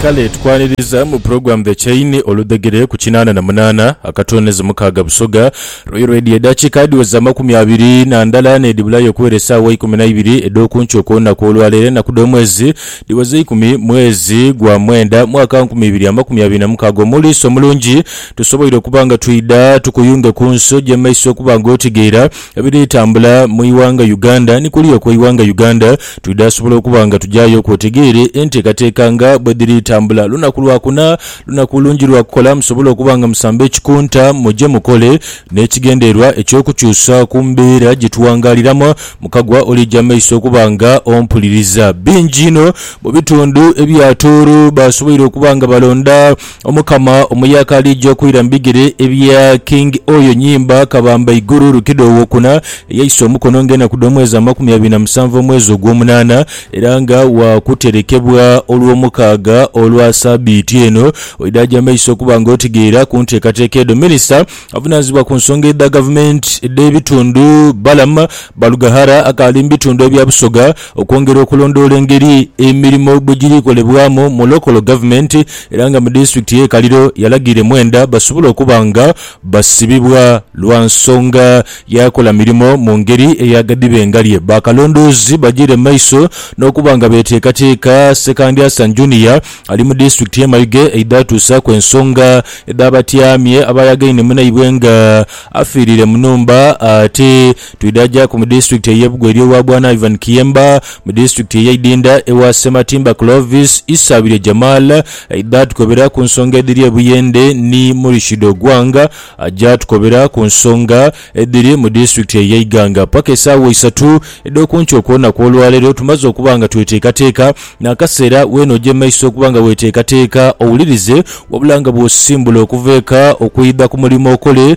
Kale tukwaniriza mu program The Chain oludhegere ku kinaana na munaana akatoonezi mukaaga Busoga Royal Radio edhakiika adhiweza amakumi abiri na ndala n'edhibulayo okuwera esaawa ikumi na ibiri edh'okunkyo kw'olunaku olwaleero enaku dh'omwezi dhiweza eikumi mwezi gwa mwenda mwaka nkumi ibiri amakumi abiri na mukaaga omuliisa omulungi tusoboire okuba nga twidha tukuyunge ku nsi ogye maiso okuba nga otegeera Ebiri tambula mu ighanga Uganda ni kuliya okwe ighanga Uganda twidha sobola okuba nga tujayo ku otegeere entekateka nga bwedhiri tambula lunaku lwa kuna lunaku lungi lwa kukola musobole okuba nga musamba ekikunta muje mukole ne kigendererwa ekyo kukyusa ku mbeera gye tuwangaliramu mukagwa olija maiso okuba nga ompuliriza. Bingi inho mu bitundu ebya Tooro basoboire okuba nga balonda Omukama omuya akaali aija okwira mu bigere ebya King Oyo Nyimba Kabamba Iguru Lukido Owokuna eyaisa omukono nga enaku dhomwezi amakumi abiri na musanvu omwezi ogwomunana era nga wakuterekebwa olwomukaaga olwa sabiiti eno oidhaja maiso okuba nga otegeera kunteekateeka edho Minisita avunanizibwa kunsonga edha gavumenti edhebitundu Balaam Barugahara akaali mubitundu ebya Busoga Okwongera okulondoola engeri emirimo bwe giri kolebwamu mu Lokolo Gavumenti era nga mu Disitulikiti y'e Kaliro yalagira Mwenda basobola okuba nga basibibwa lwa nsonga y'akola mirimo mu ngeri ey'agadiba engalye bakalondoozi bagyire mu maiso n'okuba nga beteekateeka Ssekandyasan Junior ali mu Disitulikiti y'e Mayuge eidhatuusaaku ensonga edh'abatyamye abaayagaine munaibwe nga afiirire mu nhumba ate Twidhaajaku mu disitulikiti ey'e Bugo eri ewa Bwana Ivan Kiyemba, mu disitulikiti ey'e Idinda ewa Ssematimba Clovis, Isaabirye Jamal aidha atukobera ku nsonga edhiri e Buyende ni Murishid Ogwang aja atukobera ku nsonga edhiri mu disitulikiti ey'e Iganga. Paka esaawa isatu edh'okunkyo okw'olunaku olwaleero tumaze okuba nga tweteekateeka n'akaseera weena oja emaiso okuba nga weeteekateeka owulirize wabula nga bw'osisimbula okuva eka okwidha ku mulimo okole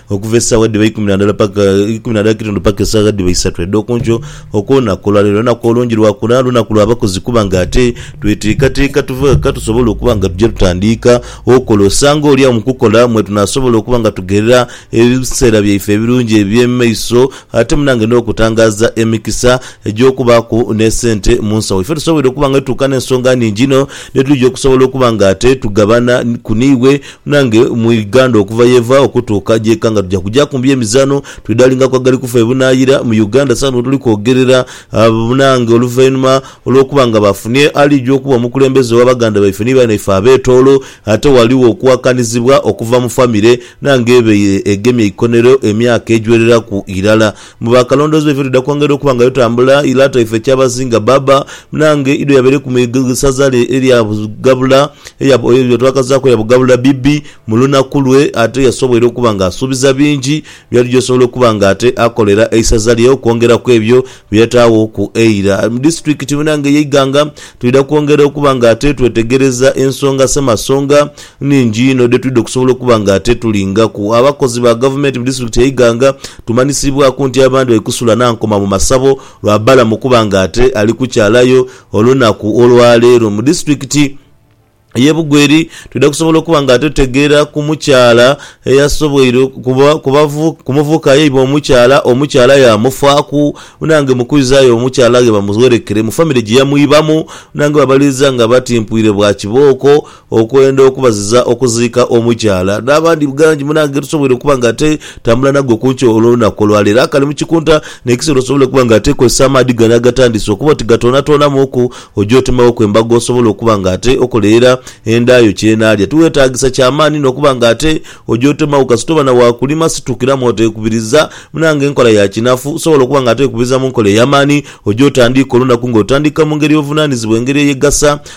Okuva esaawa edhiba eikumi na ndala paka eikumi na ndala kitundu paka esaawa edhiba isatu edh'okunkyo okw'olunaku olwaleero lunaku olungi lwa kuna, lunaku lwa bakozi kuba nga ate tweteekateeka tuve ghaka tusobole okuba nga tuja tutandiika okola. Osanga olyagho mu kukola mwe tunaasobola okuba nga tugherera ebiseera byaife ebirungi eby'omu maiso ate munange n'okutangaaza emikisa egy'okubaaku n'esente mu nsawo. Ife tusobwoire okuba nga tutuuka n'ensonga nhingi inho dhetuja okusobola okuba nga ate tugabana ku n'iwe Nange mu Uganda okuva yeva okutuuka jeka nga tuja kujaku mbi emizano twidalingako agali kufa ebunayira mu Uganda sawa notuli kwogerera banange oluvainuma olwokuba nga bafunye alija okuba omukulembeze owa baganda baife ni banaife abetolo ate waliwo okuwakanizibwa okuva mu famire nange ebeire egemye eikonero emyaka ejwereraku irala Mu baakalondoozebwa ife twidha kwongerera okuba nga tutambula yi lata ife kyabazinga bbaabba nange idho yabereku mu isaza lye erya Bugabula eya bwe twakazaaku eya Bugabula bbi mu lunaku lwe ate yasoboire okuba nga asuubiza bingi byali by'osobola okuba nga ate akolera eisaza lye okwongera ku ebyo bye yataaghoku eira mu disitulikiti munange eye Iganga. Twidha kwongerera okuba nga ate twetegereza ensonga Ssemasonga nnhingi inho dhe twidha okusobola okuba nga ate tulingaku. Abakozi ba Gavumenti mu disitulikiti e Iganga tumanhisiibwaku nti abandhi bali kusula na nkoma mu masabo lwa Balaam okuba nga ate ali kukyalayo olunaku olwa leero. Mu disitulikiti ye Bugweri twidha kusobola okuba nga ate tutegeera ku mukyala eyasoboire ku muvubuka yaibwa omukyala, omukyala yaamufaaku nange mu kwizayo omukyala ghe bamuwerekere mu famire gye yamwibamu nange babaliiza nga batimpwire bwa kibooko. Okwenda okubaziza okuziika omukyala n'abandi bgangi munange ge tusobola okuba nga te tambula nago ku nkyo olw'olunaku olwa leero. Akali mu kikunta n'ekiseera osobola okuba nga te kozesa amaadhi gano agatandise okuba oti gatoonatoonamuuku oje otemewoku embago osobola okuba nga te okolerera enda yo ky'enaalya. Tiweetaagisa kya maani n'okuba nga te oje otemewo kasita oba na wa kulima. Situkiramu oteekubiriza munange nkola ya kinafu. Osobola okuba nga te okubiriza mu nkola ey'amaani oje otandiike olunaku nga otandika mu ngeri y'obuvunaanizibwa engeri eyegasa.